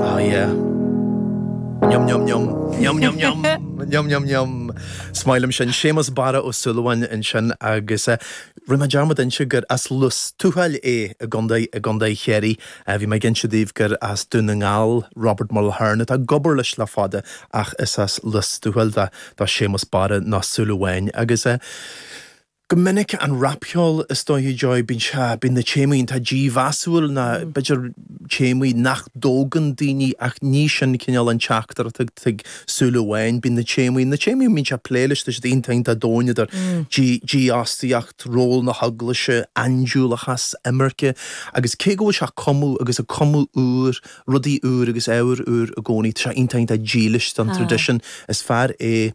Ah yeah. Yum yum yum. Yum yum yum. Yum yum yum. Is maith liom sin. Séamus Barra Ó Súilleabháin ansin agus eh rinne mé dearmad inse gur as Lios Tuathail é i gContae, i gContae Chiarraí. Eh bhí mé ag inse daoibh gur as Dún na nGall Robert Mulhern atá ag obair leis le fada ach is as Lios Tuathail do Séamus Barra, nó Súil Amháin, agus eh, Go minic an rapcheol is dóiche Joy, bíonn sé, bíonn na téamaí, iontach dímheasúil nó b'fhéidir téamaí nach dtógann daoine ach ní sin cineál an teachtaireacht atá ag Súil Amháin, bíonn na téamaí, na téamaí a mbíonn sé ag plé leis tá siad iontach, iontach domhain idir dífhostaíocht, ról na hEaglaise, aindiúlachas, imirce agus cé go bhfuil sé ag cumadh agus ag cumadh úr, rudaí úr agus ábhar úr i gcónaí tá sé iontach, iontach dílis don traidisiún, is fear é.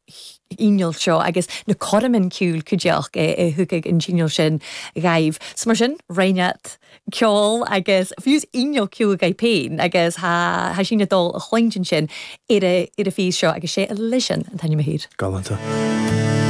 chineál seo agus na cuirmean ciúil cuideachd a thugadh an cineál sin dhaibh. So mar sin, rinn iad ceol agus fiú is inneall ciúil agaibh féin agus thá sinn ag dul a chluinntinn sin ar a' phíos seo agus sé Alison an t-ainm a th' air. Galanta.